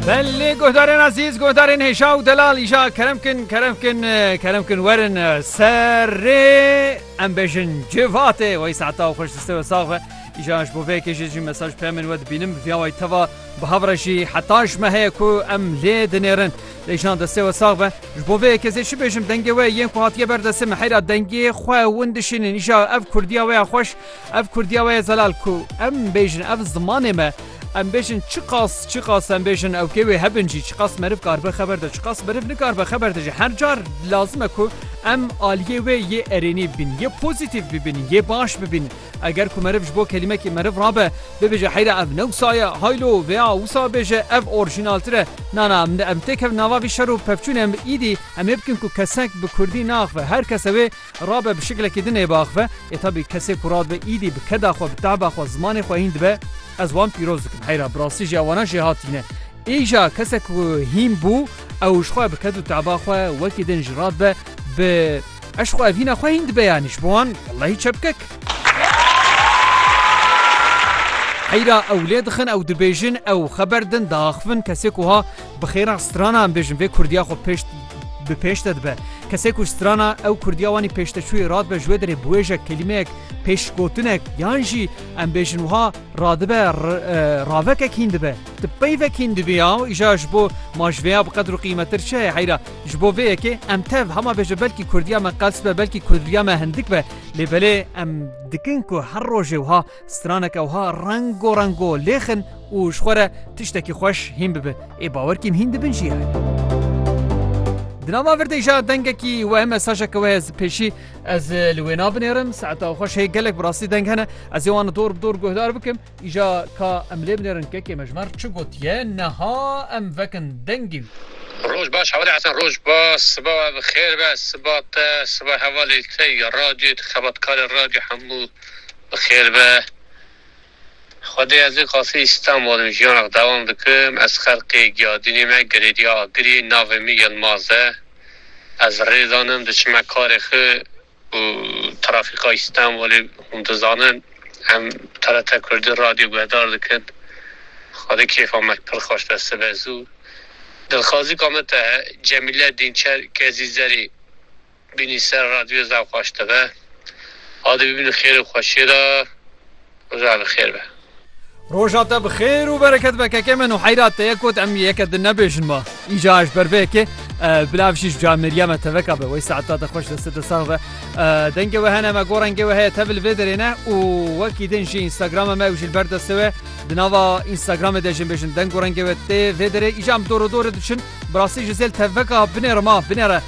Belê guhdarên ezîz, guhdarên hêja û delal îja kerem kin, kerem kin, kerem kin werin serê em bêjin civate wey saeta xweş diste we sax be. Îja ji bo vê yekê jî jî mesaj peyamên we dibînim bi vîya wey teva bi hev re jî heta ji me heye ku em lê dinêrin. Lê îjan destê we sax be. Ji bo vê yekê zê çi bêjim dengê we yên ku hatiye ber destê me heyra dengê xwe win dişînin îja ev kurdiya we ya xweş Ev Kurdiya we ye zelal ku em bêjin ev zimanê me, em bêjin çiqas çiqas em bêjin ewkê wê hebin jî çiqas meriv karibe xeber de çiqas meriv nikaribe xeber de jî her car lazim e ku em aliyê wê yê erênî bibîn yê pozîtîf bibîn yê baş bibîn eger ku meriv ji bo kelîmekî meriv rabe bibêje heyre ev ne wisa ye haylo vêya wisa bêje ev orjînaltir e na na em têkevin nava vî şer û pevçûnê em îdî em ê bikin ku kesek bi kurdî naaxive her kes ew ê Rabe bi şiklekî din ê biaxive, ê tabî kesê ku radibe îdî bi keda xwe, bi tehba xwe, zimanê xwe hîn dibe, ez wan pîroz dikim. Heyra bi rastî jî ewana jê hatîne. Îja kesek ku hîn bû, ew ji xwe bi ked û tehba xwe wekî din jî radibe, bi eşq û evhîna xwe hîn dibe yanî ji bo wan wellahî çepkek. Heyra ew lê dixin, ew dibêjin, ew xeber din, diaxivin, kesê ku ha Bi xêra strana em bêjin vê Kurdiya xwe pêş bi pêş de dibe. Kesê ku strana ew Kurdiya wanî pêşteçûyê radibe ji wê derê biwêjek, kelîmeyek, pêşgotinek yan jî em bêjin wiha radibe ravekek hîn dibe. Ti peyvek hîn dibiya û îja ji bo ma ji vêya bi qedr û qîmetir çi heye heyra. Ji bo vê yekê em tev hema bêje belkî Kurdiya me qels be belkî Kurdiya me hindik be lê belê em dikin ku her rojê wiha Straneke wiha rengo rengo lêx in û ji xwe re tiştekî xweş hîn bibe. Ê bawer kîm hîn dibin jî heye. Di nava virdê ja dengekî wehe mesajeke wehe ez pêşî ez li wê nabinêrim. Saeta xweş heye gelek bi rastî deng hene. Ez ê wan dor bi dor guhdar bikim. Îja ka em lê binêrin kekê me ji me re çi gotiye niha em vekin dengê wî. Roj baş Hewlê Hesen Roj baş siba we bi xêr be siba te siba hevalê te ya radyoyê tu xebatkarê radyo hemû Bi xêr be. Xwedê ez ê qasî Îstanbol im, jiyanek dewam dikim. Ez Xerqê Giyadînê me, Girêdîya Agirî. Navê min Yilmaz e. Ez Rêzan im, diçime karê xwe û trafîka Îstanbolê hûn dizanin. Em TRT Kurdî radyo guhdar dikin. Xwedê kêfa me pir xweş be, sibe zû. Dilxwazîka min te ye, Cemîle Dînçer Kezîzerî Bînî ser radyo zaf xweş dibe. Adê bibînî xêrê xweşiyê de. Roja bi xêr be. Roja te bi xêr û bereket be kekê min û heyra te ye got em yeke din nebêjin ma. Îca ji ber vê yekê bila vijî ji ca Meryeme teveka be wey saeta te xweş deste te sax be. Dengê we hene me got rengê we heye tevil vê derê ne û wekî din jî Instagramê me ew jî li ber destê we di nava Instagramê de jê bêjin deng û rengê we tê vê derê îca em dor û dorê diçin. Bi rastî ji zêl tevveka binêre ma binêre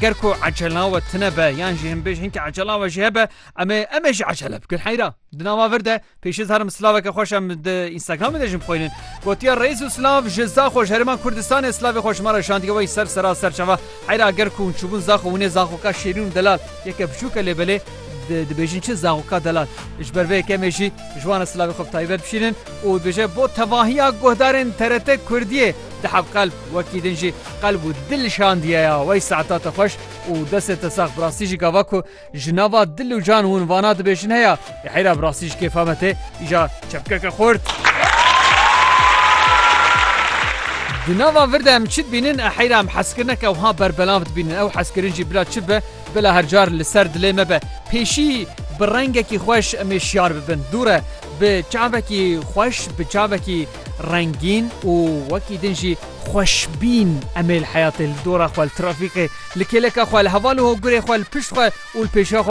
ger ku ecelna we tine be yan jî him bêj hinkî ecelna we jî hebe em ê em ê jî ecele bikin heyra di nava vir de pêşiz herim silaveke xweş em di Instagramê de jim xwînin gotiya reis û silav ji zaxo ji herêma Kurdistanê silavê xwe ji me re şandiye wey ser sera ser çava heyra ger ku hûn çûbûn zaxo hûnê zaxoka şêrîn û delal yeke biçûke lê belê dibêjin çi zaxoka delal ji ber vê kemê jî ji wan re silavê xwe bi taybet bişînin û dibêje bo tevahiya guhdarên TRT Kurdiyê Di hev qelb wekî din jî qelb û dil şandiye ya wey saeta te xweş û destê te sax bi rastî jî gava ku ji nava dil û can hûn vana dibêjin heya lê heyra bi rastî ji kêfa me tê îja çepkeke xurt. Di nava vir de em çi dibînin e heyra em hezkirineke wiha berbelav dibînin ew hezkirin jî bila çi bibe bila her car li ser dilê me be pêşî bi rengekî xweş em ê şiyar bibin dûre bi çavekî xweş bi çavekî rengîn û wekî din jî xweşbîn em ê li heyatê, li dora xwe, li trafîkê, li kêleka xwe, li heval û hogurê xwe, li pişt xwe û li pêşiya xwe